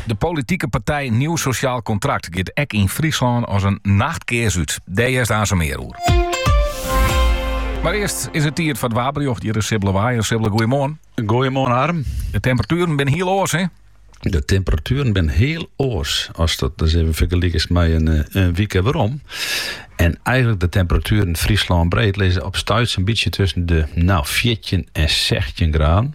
De politike partij Nieuw Sociaal Contract giet ek yn Fryslân as in nachtkears út. Dêr hearst aanst mear oer. Mar earst is it tiid foar it waarberjocht. Hjir is Sibbele Waaier. Sibbele, goeiemoarn. Goeiemoarn, Harm. De temperatueren binne hiel oars, hè? De temperatueren binne hiel oars. Ast dat dus even fergelikest mei in, eh, in wike werom. En eigenlik de temperatueren Fryslânbreed lizze op stuit sa'n bytsje tusken de no, 14 en 16 graden.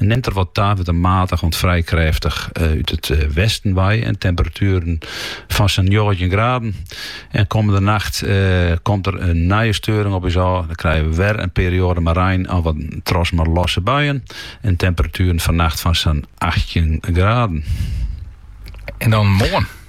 It nimt der wat ta wurdt in matich oant frij krêftich út it westen wei en temperatueren fan sa'n njoggentjin graden. En kommende nacht komt der in nije steuring op ús ôf. Dan krije we wer in perioade mei rein of wat troch mar losse buien en temperatueren fannacht fan sa'n achttjin graden. En dan moarn?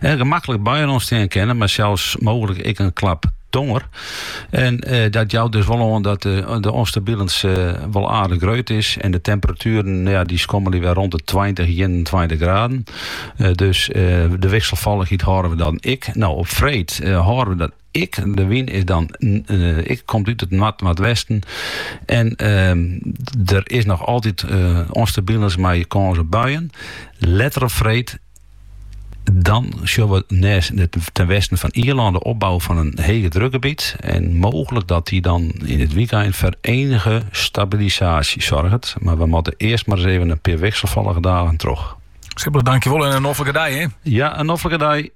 En gemaklik buien ûntstean kinne, mar sels mooglik ek in klap tonger. En eh, dat jout dus wol oan dat de, eh, de ûnstabilens eh, wol aardich greut is. En de temperatueren ja, dy skommelje wer rûn de 20, 21 graden. Eh, dus eh, de wikselfallichheid hâlde we dan ek. No, op freed eh, hâlde we dat ek. De wyn is dan, eh, ek komt út it noardwesten. En ehm, der is noch altyd eh ûnstabilens, mei kâns op buien. Letter op freed Dan sjoch we net ten westen fan Ierlân de opbouw fan in hegedrukgebiet. En mooglik dat dy dan in it wykein foar enige stabilisaasje soarget. Mar we moatte earst mar ris even in pear wikselfallige dagen troch. Sibbele, dankjewol en in noflike dei, hè? Ja, in noflike dei.